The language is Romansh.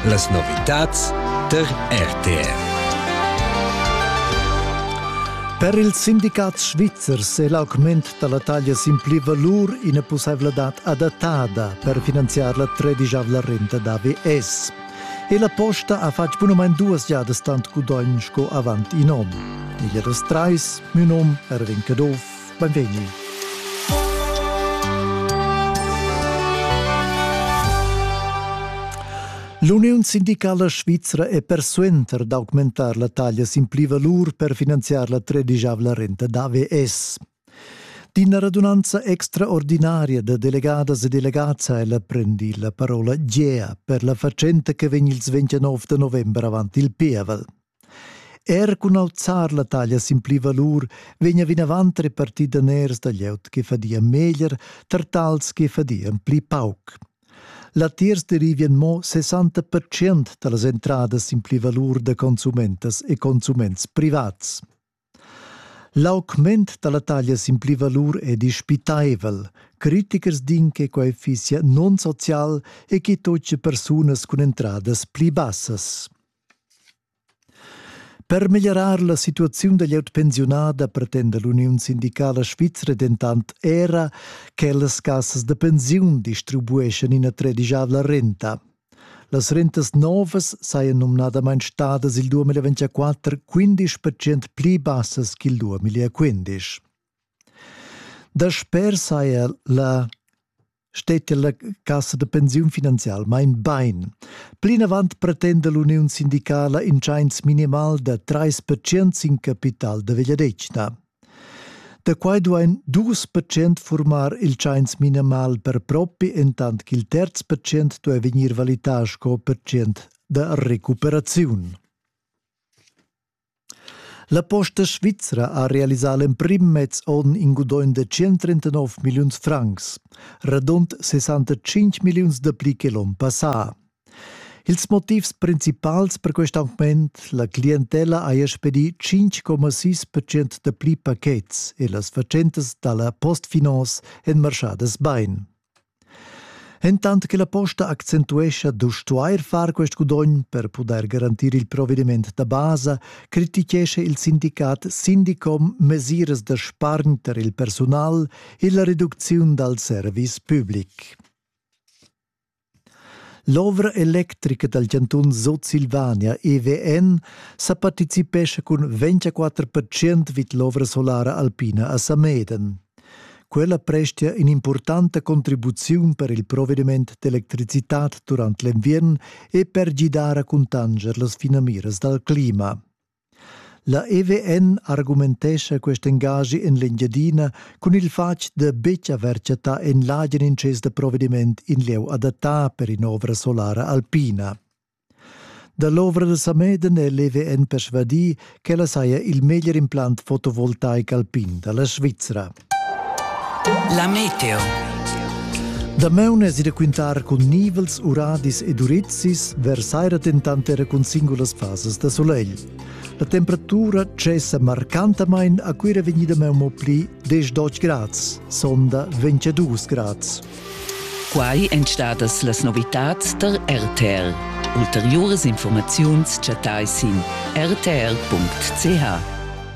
Las novitads per RTR. Per ils sindicats svizzers è l'augment da la taglia sin pli valur ina pussaivladad adattada per finanziar la tredischavla renta da VS. E la posta ha fatg bunamain duas giadas tant gudogn sco avant in onn. Igl era trais, mio num Erwin Caduff, Beinvegni. L'Uniun sindicala svizra è persuenter d'augmentar la taglia sin pli valur per finanziar la tredigiavla renta d'AVS. D'ina radunanza extraordinaria da delegadas e delegats ha ella prendi la parola Gea per la fatschenta che vegn il 29 november avant il pievel. Er cun alzar la taglia sin pli valur vegna vinavant repartì daners da glieud che fadian meglier tar tals che fadian pli pauc. Latiers derivien mo 60% da las entradas sin pli valur da consumentas e consuments privats. L'augment dalla taglia sin pli valur è dispitaivel. Critichers din che quai fissia non-social e che toce persunas cun entradas pli bassas. Per meglierar la situaziun da glieud pensiunada pretenda l'Uniun sindicala svizra dentant era che las cassas da pensiun distribueschan ina tredigiavla renta. Las rentas novas sajan numnadamain stadas il 2024 15 percent pli bassas ch'il 2015. Dasper saja la stetia la cassa da pensiun finanzial main bain. Plinavant pretenda l'uniun sindicala in tschains minimal da 3% sin capital da vegliadetgna. Da quai duain dus percent furmar il tschains minimal per propi, entant ch'il terz percent duai vegnir valità sco percent da recuperaziun. La Posta Svizra ha realisà l'emprim mez onn in gudogn da 139 milliuns francs, radund 65 milliuns dapli che l'onn passà. Ils motivs principals per quest augment la clientella haja spedì 5,6% da pli pachets e las fatschentas da la Postfinance èn marschadas bain. Entant che la posta accentuescha da stuair far quest gudogn per pudair garantir il provediment da basa, critichescha il sindicat Sindicom mesiras da spargn per il persunal e la reducziun dal service public. L'ovra electrica dal chantun Sutsilvania EVN sa participescha cun 24% vid l'ovra solara alpina a Sameden. Quella prestia in'impurtanta contribuziun per il provediment d'electricitad durant l'enviern e per gidar a cuntanscher las finamiras dal clima. La EVN argumentescha quest engaschi en l'Engiadina cun il fatg da betg haver chattà en l'agen intschess da provediment in lieu adattà per in'ovra solara alpina. Da l'ovra da Sameden è l'EVN persvadì ch'ella saja il meglier implant fotovoltaic alpin da la Svizra. La meteo. Damaun es id a quintar cun nivels, uradis ed urizis, vers saira dentant era cun singulas fasas da solegl. La temperatura cessa marcantamain a Cuira vegnida meun mo pli 10-12 grads, sonda 22 grads. Quai èn stadas las novitads tar RTR. Ulteriuras informaziuns chattai sin rtr.ch.